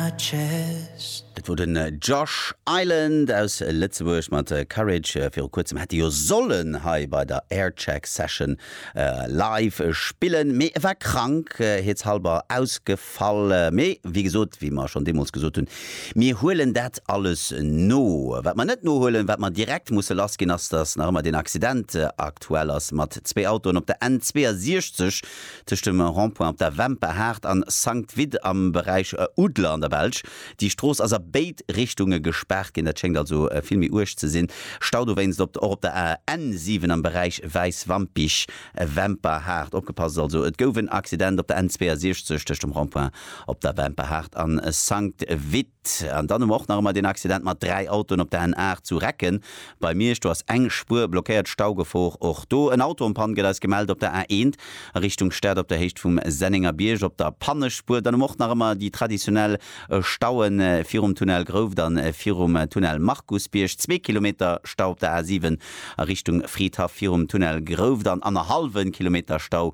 Dat wor den Josh Island aus Lëtzebuerg mat Courage. Viru kuerzem hätt e jo sollen hei bei der Aircheck Session live spillen, mee e war krank, hietshalber ausgefall. Mee wéi gesot, wéi mer schonn deemools gesot hunn, mir huelen dat alles no. Wat mer net nohuelen, wat mer direkt musse lassginn, ass, dass nach ëmmer deen Accident aktuell ass mat zwee Autoen op der N 62, Tëscht dem Rond-point op der Wemper Haard an Sankt Vith am Beräich Oudler an der Belsch. Déi Strooss ass a béid Richtunge gespaart ginn. Dat schéngt also vill méi uerg ze sinn. Stau dowéinst op och op der AN 7 am Beräich Wäiswampich, Wemper Haard. Opgepasst also, et gouf en Accident op der N 62 tëscht dem Rond-point op der Wemper Haard an Sankt Vith. An dann hu mer och nach ëmmer deen Accident mat dräi Autoen op der N 8 zu Recken bei Miersch. Do ass eng Spuer blockéiert, Staugefor och do. En Auto am Panne gëtt eis gemellt op der A 1 a Richtung Stad op der Héicht vum Sennenger Bierg op der Pannespuer. Dann hu mer och nach ëmmer déi traditionell Staue virum Tunnel Grouft a virum Tunnel Markusbierg. Zwee Kilometer Stau op der A 7 a Richtung Fridhaff virum Tunnel Grouft an annerhallwe Kilometer Stau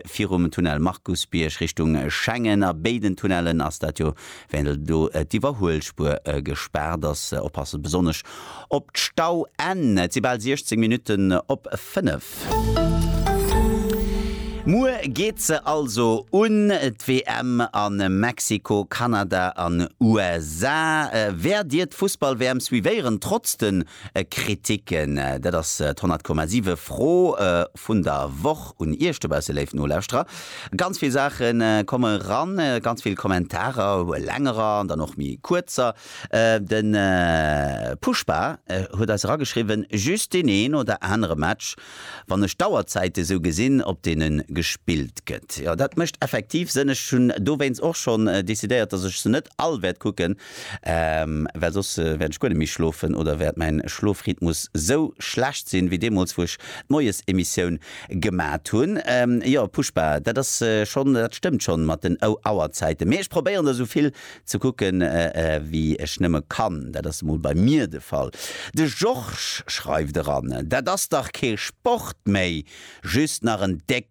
virum Tunnel Markusbierg Richtung Schengen. A béiden Tunnellen ass dat jo Well do d'Iwwerhuelspuer gespaart ass, oppasse besonnesch op d'Stauenn. Et si bal 16 Minutten op 5. Muer geet se also un, d'WM a Mexiko, Kanada an USA. Wäert Dir d'Fussball-WM suivéieren, trotz de Kritiken. Dat ass d'Honnert Komma Siwe Fro vun der Woch un Iech dobausse léif Nolauschterer. Ganz vill Saache komme ran, ganz vill Kommentarer, längerer an dann och méi kuerzer. De Pushpa huet eis erageschriwwen, Just deen een oder anere Match, wann ech d'Auerzäite sou gesinn, op deene gespillt gëtt. Jo, dat mécht effektiv Sënn. Ech hunn dowéinst och schonn decidéiert, datt ech se net all wäert kucken. Well soss wäert ech guer net méi schlofen oder wäert mäin Schlofrhythmus sou schlecht sinn, wéi deemools wou ech d'Moiesemissioun gemat hunn. Jo Pushpa, dat ass schonn, dat stëmmt schonn mat den Auerzäiten, mee ech probéieren der sou vill ze kucken wéi ech nëmme kann. Dat ass emol bei mir de Fall. De Georges schreift eran, Dat ass dach kee Sport méi, just nach en déck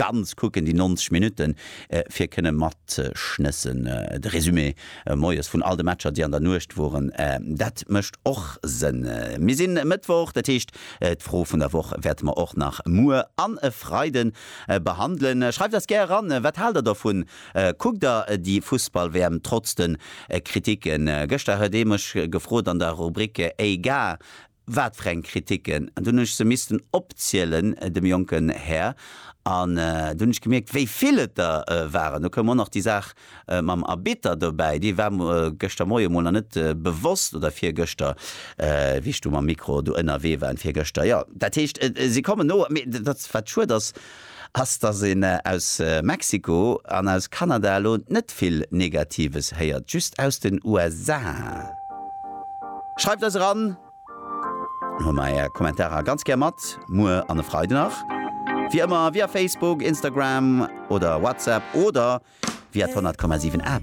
Ganz kucken déi 90 Minutten fir kënne matschnëssen. De Resumé moies vun all de Matcher déi an der Nuecht woren, dat mécht och Sënn. Mir sinn e Mëttwoch, dat heescht d'Fro vun der Woch wäerte mer och nach muer an e Freide behandelen. Schreift eis gär eran, wat haalt der dovun? Kuckt der déi Fussball-WM trotz de Kriticken? Gëschter huet ee mech gefrot an der Rubrik Ey Gars, Wat fir eng Kritiken! An dunn hunn ech se missten opzielen dem jonken Här. An dunn hunn ech gemierkt, wéi vill et der waren. Do koum och nach déi Saach mam Arbitter dobäi, déi war mer gëschter Moie mol nach net bewosst, oder virgëschter, wéi ech do mam Mikro do ënnerwee war, virgëschter, jo. Dat heescht, si kommen no. Mee dat, wat schued ass, ass, dass een aus Mexiko an aus Kanada elo net vill Negatives héiert, just aus den USA. Schreift eis eran, dann huele mer är Kommentarer ganz gär mat, muer an e Freiden nach, wéi ëmmer via Facebook, Instagram oder WhatsApp oder via d'Honnertkommasiwwen App.